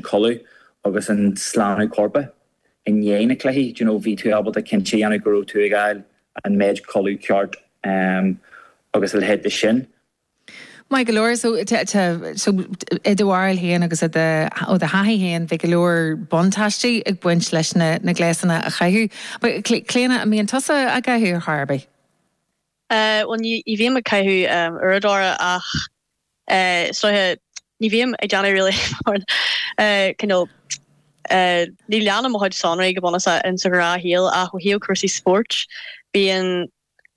codladh agus an slánú coirp i ndiaidh na cluichí, do you know, bhí tú ábalta cinnte a dhéanamh go raibh tú ag fháil an méid codladh ceart agus a leithéid de sin. Maith go leor, so so i do bharúil féin agus i do, ó do thaithí féin, bhí go leor buntáistí ag baint leis na gléasanna a chaitheamh. Clíona, an mbíonn tusa á gcaitheamh ar chor ar bith? Bhuel, ní bhím ag caitheamh uaireadóra ach is dóiche, ní bhím ag déanamh really mar you know ní leanaim mo chuid sonraí go bunúsach in sa ghnáthshaol ach ó thaobh cúrsaí spóirt bíonn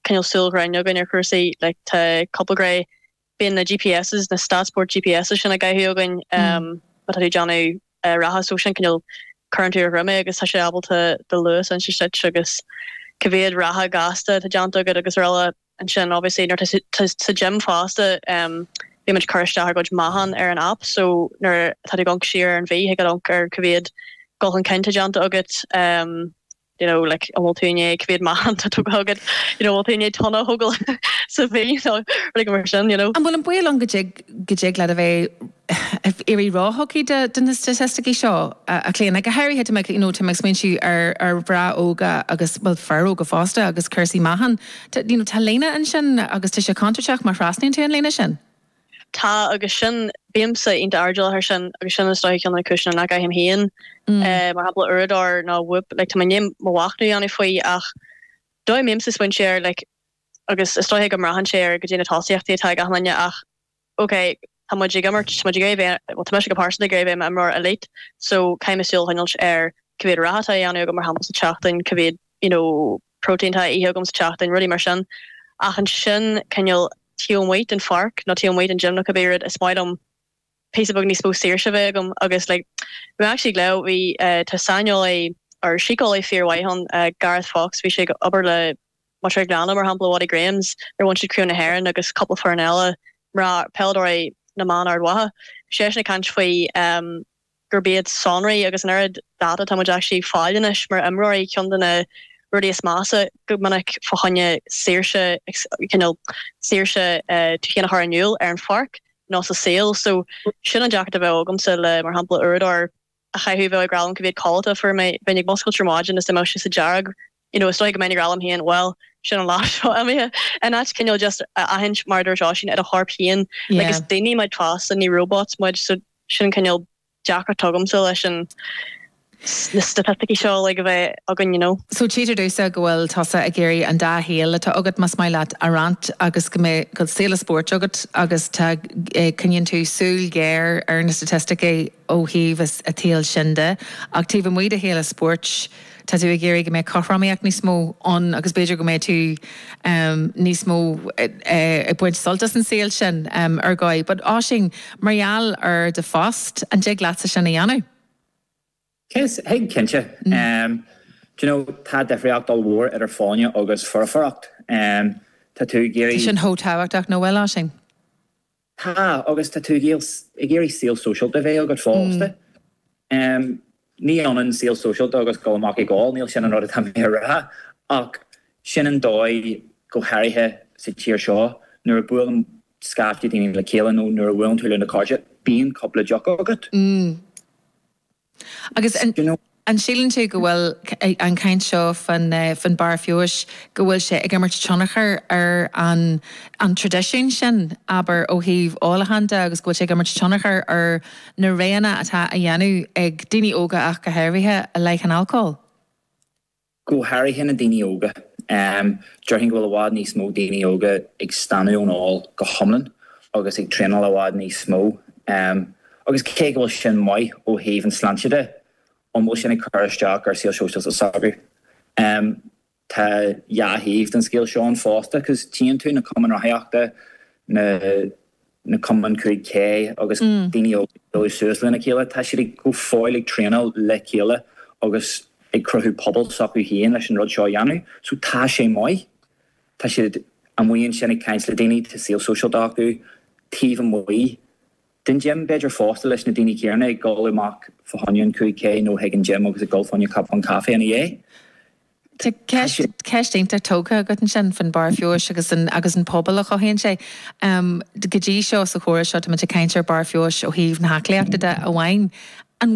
you know súil ghéar againn ar chúrsaí like tá cúpla grey bíonn na GPS' na STATSports GPS' sin á gcaitheamh againn má tá tú ag déanamh reatha so sin cineál cuireann tú ar do dhroim é agus tá sé ábalta do luas a insint duit agus cá mhéad reatha gasta atá déanta agat agus araile. Ansin obviously nuair atá tú sa gym fosta bímid ag cur isteach ár gcuid meáchán ar an app so nuair atá tú ag amharc siar ar an mhí thig leat amharc ar cá mhéad dhul chun cinn atá déanta agat. you know like an bhfuil tú i ndiaidh cá mhéad meáchan atá tógtha agat you know an bhfuil tú i ndiaidh tonna a thógáil sa mhí nó rudaí mar sin you know. An bhfuil an baol ann go dtig leat a bheith ag éirí ró-thugtha do na staitisticí seo, a Chlíona? Go háirithe tá mé ag, you know, tá mé ag smaointiú ar mhná óga agus, bhuel, fir óga fosta agus cúrsaí meáchain. You know tá líne ansin agus tá sé contúirteach má thrasnaíonn tú an líne sin. Tá agus sin, bímse iontach airdeallach ar sin agus sin is dóiche ceann de na cúiseanna nach gcaithim féin mar shampla uaireadóir nó whoop like tá mé i ndiaidh mo mhachnamh a dhéanamh faoi ach dóigh mbímse ag smaointiú air like agus is dóiche go mbraitheann sé ar caidé na tosaíochtaí atá ag gach duine ach ok tá muid ag imirt tá muid ag iarraidh a bheith bhuel tá mise go pearsanta ag iarraidh a bheith i m'imreoir elite so caithfidh mé súil a choinneáilt ar cá mhéad reatha atá á dhéanamh agam mar shampla sa tseachtain cá mhéad you know protein atá á ithe agam sa tseachtain, rudaí mar sin. Ach ansin cineál taobh amuigh den pháirc nó taobh amuigh den gym nó cibé rud is maith liom píosa beag níos mó saoirse a bheith agam agus like we actually glaodh bhí eh tá saineolaí or síceolaí fíormhaith ann eh Gareth Fox bhí sé ag obair le muintir an Ghleanna mar shampla Watty Grahams nuair a bhain siad craobh na hÉireann agus cúpla foireann eile peileadóirí na mban Ard Mhacha seisean ag caint faoi em gurb iad sonraí agus an oiread data atá muid actually ag fáil anois mar imreoirí ceann de na rudaí is measa go minic fá choinne saoirse you know saoirse tú féin a chur in iúl ar an pháirc nó sa saol so sin an deacracht a bheadh agamsa le mar shampla uaireadóir a chaitheamh a bheadh ag rá liom cá mhéad codlata a fuair mé bheinn ag muscailt ar maidin agus dá mbeadh sé sa dearg you know is dóigh go mbeinn ag rá liom féin bhuel sin an lá seo imithe in áit cineál just a aithint mar a dúirt Oisín ar a chorp féin like is daoine muid fosta ní robots muid so sin an cineál deacracht atá agamsa leis na staitisticí seo like a bheith againn you know. So tchítear domhsa go bhfuil tusa ag iarraidh an dá shaol atá agat, más maith leat a roinnt agus go mbeadh saol spóirt agat agus tá coinníonn tú súil ghéar ar na staitisticí ó thaobh an tsaoil sin de ach taobh amuigh de shaol spóirt tá tú ag iarraidh go mbeadh cothromaíocht níos mó ann agus b'fhéidir go mbeidh tú níos mó ag baint sult as an saol sin ar dhóigh. But Oisín, mar gheall ar do phost, an dtig leatsa sin a dhéanamh? Is thig, cinnte. Do you know, tá difríocht ollmhór idir folláine agus foirfeacht. Tá tú ag iarraidh. Tá sin chomh tábhachtach, nach bhfuil, Oisín? Tá, agus tá tú ag iarraidh saol sóisialta a bheith agat fosta. Ní ionann saol sóisialta agus dul amach ag ól, níl sin an rud atá mé a rá, ach sin an dóigh, go háirithe sa tír seo, nuair a bhuaileann scaifte daoine le chéile nó nuair a bhuaileann tú leis na cairde, bíonn cúpla deoch agat. Agus an síleann tú go bhfuil an chaint seo faoin bharr feabhais, go bhfuil sé ag imirt tionchar ar an traidisiún sin, abair, ó thaobh ólacháin de agus go bhfuil sé ag imirt tionchar ar na roghanna atá á dhéanamh ag daoine óga ach go háirithe i leith an alcóil? Go háirithe na daoine óga. Déarfainn go bhfuil i bhfad níos mó daoine óga ag staonadh ón ól go hiomlán agus ag traenáil i bhfad níos mó. Agus cé go bhfuil sin maith ó thaobh an tsláinte de, an bhfuil sin ag cur isteach ar saol sóisialta s'acu? Tá dhá thaobh den scéal seo ann fosta, 'cause tchíonn tú na cumainn rothaíochta, na na cumainn 5K agus daoine óga ag bualadh suas lena chéile, tá siad ag go fóill ag traenáil le chéile agus ag cruthú pobal s'acu féin leis an rud seo a dhéanamh. So tá sé maith. Tá siad amuigh ansin ag caint le daoine, tá saol sóisialta acu taobh amuigh den gym b'fhéidir fosta leis na daoine céanna ag dul amach fá choinne an 5K nó chuig an gym agus ag dul fá choinne cupán caife ina dhiaidh. Tá ceist iontach tógtha agat ansin faoin Barr Feabhais agus an pobal a chothaíonn sé. Go dtí seo sa chomhrá seo táimid ag caint ar Barr Feabhais ó thaobh na haclaíochta de amháin.